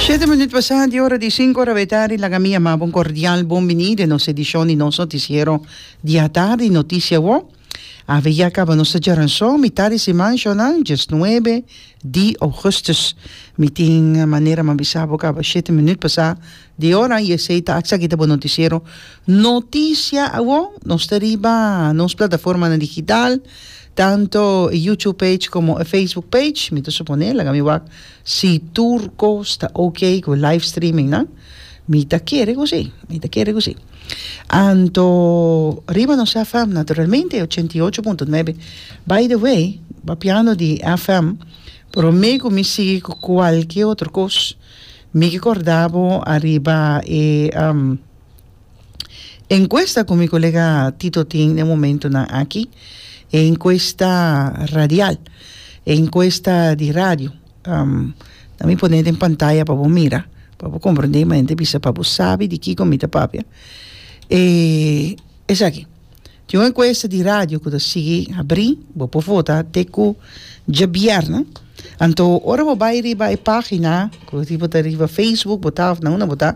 Shete minut pasá di ora di sinku ora b'e tardi, laga mi a maba un kordial bon biní den nos edishon di nos notisiero di atardi, Notisia Awo. Awe ya kaba nos ta djora anso, mitad di siman shornal, djes nuebe di ougùstùs. Mi tin manera m'ha bisa bo kaba shete minut pasá Di ora i esei ta acha kita bo noticiero Noticia awor. Nos ta riba nos plataformanan digital, tanto e YouTube page como e Facebook page. Mi ta suponé, laga mi wak, si tur cos ta ok cu e live streaming nan. Mi ta kere cu si, mi ta kere cu si. Anto riba nos FM, naturalmente, ochenta i ocho punto nuebe. By the way, papiando di FM, prome cu mi sigui cu cualkier otro cos, Mi ki corda bo ariba e encuesta cu mi colega Tito tin n'e momentonan aki, e encuesta radial, e encuesta di radio. Nan mi pone den pantaya pa bo mira, pa bo comprende y manera di bisa pa bo sabi di kico mi ta papia. E esaki. Tin un encuesta di radio cu ta sigui habri, bo por vota te cu djabièrna. Anto ora bo bai riba e pagina cu si bo ta riba Facebook bota of na unda bo ta,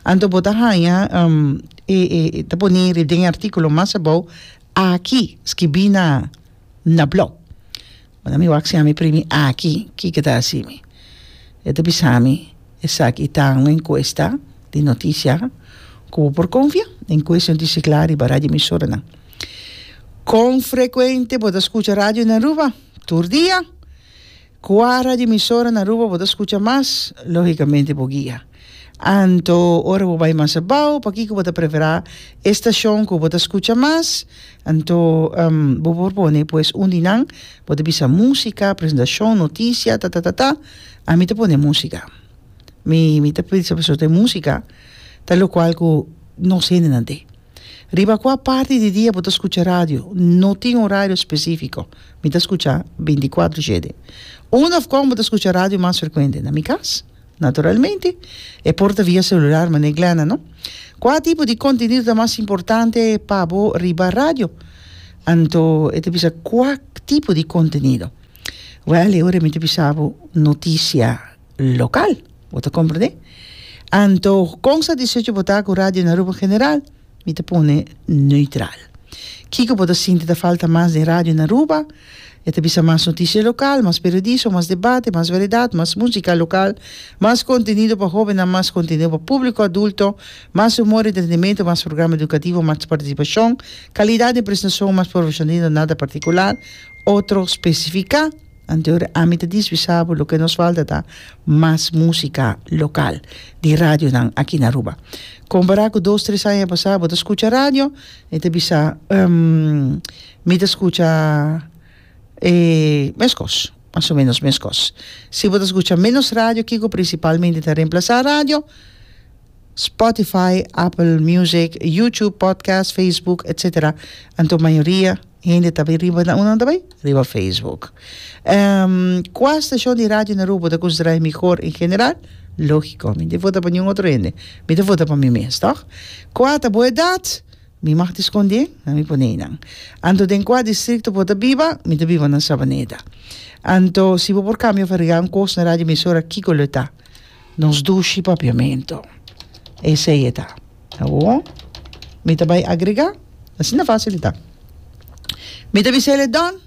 anto bo ta haya e e ta poni den e articulo mas abou aki, skibi na blog. Ora mi wak siami primi aki, kiko ta hasimi? E ta bisami, Esaki ta un enkuesta di notisia ku bo por konfia. Enkuesta yon tisi kla riba radioemisoranan. Kon frekuente bo ta skucha radio na Aruba? Tur dia. Kua radioemisora na Aruba bo ta skucha mas? Lógikamente bo guia. Anto ora bo bai mas abao, pakiko bo ta preferá e stashon ku bo ta skucha mas? Anto bo por pone pues un di nan, bo ta bisa músika, presentashon, notisia, ta ta ta ta. Ami ta pone músika. Mi mi ta bisa pasobra e músika ta lokual ku nos hendenan te. Riba kua parti di dia bo ta skucha radio? No tin orario spesífiko. Mi ta skucha binti kuatru shede. Unda òf kon bo ta skucha radio mas frekuente? Na mi kas? Naturalmente, e por ta via celular, manera Glenna, no? Cua tipo di contenido ta mas importante pa bo riba radio? Anto e ta bisa, cua tipo di contenido? Well, e ora mi ta bisa bo, noticia local. Bo ta comprende? Anto, con satisfecho bo ta cu Radio Aruba en general? Mi ta pone neutral. Kiko bo ta sinti ta falta mas den radio na Aruba? E ta bisa mas noticia local, mas periodismo, mas debate, mas variedad, mas musica local, mas contenido pa hobennan, mas contenido pa publico adulto, mas humor, entretenimento, mas programa educativo, mas participacion, calidad den presentacion, mas profesionalismo, nada particular, otro specifica. Anterior ami ta diswisa bo loke nos falta ta mas musika lokal di radionan aki na Aruba. Kompará ku dos tres aña pasá bo ta skucha radio e ta bisa mi ta skucha e meskos mas o menos meskos. Si bo ta skucha menos radio kiko prinsipalmente ta remplasá radio? Spotify, Apple Music, YouTube, podcast, Facebook, etsetera anto mayoria Hende ta bai riba na unan ta bai riba Facebook. Ehm kua stashon di radio na Aruba ta considera e mihor en general? Logico, mi no tin vota pa niun otro hende. Mi ta vota pa mi mes, toch? Kua ta bo edad? Mi mag tin sconde na mi pone einan. Anto den kua districto bo ta biba? Mi ta biba na Sabaneda. Anto si bo por cambia of arregla un cos na radio emisora kico lo e ta? Nos dushi papiamento. Esey e ta. Awor, mi ta bai agregá, asina fásil i ta. Mi ta bisa el e Don,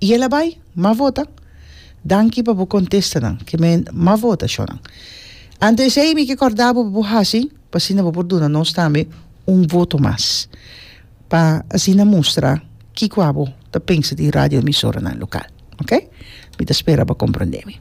i el a bai, Mavota. Danki pa bo kontestanan, ke men Mavota shownan. Ante esei mi ke kòrdá bo pa bo hasi, pa asina bo por duna nos tambe un voto mas, pa asina mustra kiko abo ta pensa di radioemisoranan lokal. Oke? Mi ta spera bo komprondé mi.